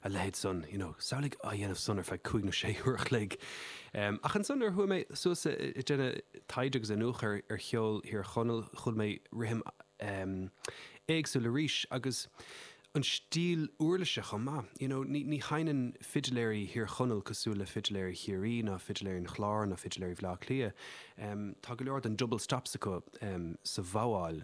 a leithéid san, you know, samhlaigh á dhéanamh san ar feadh cúig nó sé uair a chloig. Um, ach ansan nuair a chuaigh mé suas i, i déanamh taighde agus iniúchadh ar, ar cheol Thír Chonaill, chuala mé rithim, um, éagsúil arís agus an stíl uirlise chomh maith. You know, ní, ní sheinneann fidiléirí Thír Chonaill cosúil le fidiléirí Chiarraí ná fidiléirí an Chláir ná fidiléirí Bhleá Cliath. Um, tá go leor den double stops acu, um, sa bhogháil.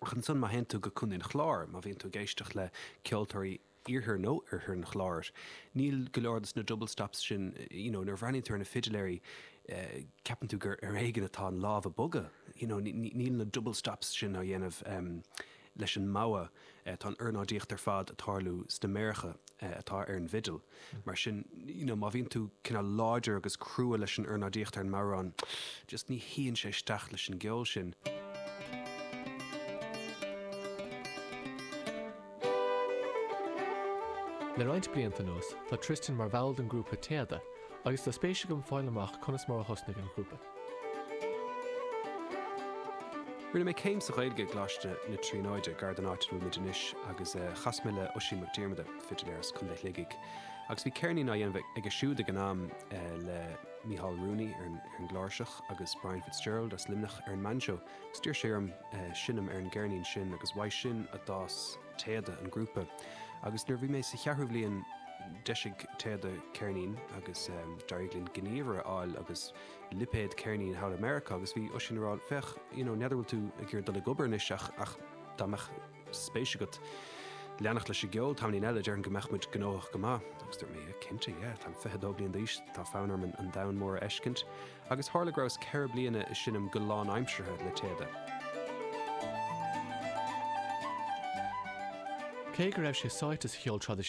Ach ansan, má théann tú go Contae an Chláir, má bhíonn tú ag éisteacht le ceoltóirí Iarthar nó Oirthear an Chláir, níl go leor de na double stops sin, you know, nuair a bhreathnaíonn tú ar na fidiléirí, ceapann tú gur ar éigean atá an lámh ag bogadh, you know, níl na double stops sin á dhéanamh leis an mbogha. eh tá an ornáidíocht ar fad ag tarlú sna méaracha eh atá ar an bhfidil mar sin you know má bhíonn tú cineál láidir agus crua leis an ornáidíocht ar an mbodhrán, just ní shuíonn sé isteach leis an gceol sin. Le roinnt blianta anuas tá Tristan mar bhall den grúpa Téada agus tá spéis agam fáil amach conas mar a thosnaigh an grúpa. Rinne mé céim sa Ghaeilge i gColáiste na Tríonóide, gar don áit a bhfuil muid anois, agus chas mé le Oisín Mac Diarmada, fidiléir as Contae Shligigh, agus bhí ceirnín á dhéanamh aige siúd ag an am le Micheál Rooney ar an gcláirseach agus Brian Fitzgerald as Luimneach ar an mbainseó. Agus d'iarr sé orm seinm ar an gceirnín sin agus uaidh sin a d'fhás téada an grúpa agus nuair a bhí mé sa cheathrú bliain d'eisigh Téada ceirnín agus d'éirigh linn gníomhaire a fháil agus lipéad ceirnín thall i Meiriceá agus bhí Oisín ag rá féach you know n'fheadar bhfuil tú ag iarraidh dul ag obair anois ach ach dá mbeadh spéis agat leanacht leis an gceol tamaillín eile déarfainn go mbeadh muid gnóthach go maith agus dúirt mé yeah cinnte yeah táim 22 bliain d'aois tá fonn orm an domhan mór a fheiscint agus tharla go rabhas ceithre bliana ag seinm go lánaimseartha le Téada. Cé go raibh sé sáite sa cheol traidisiúnta,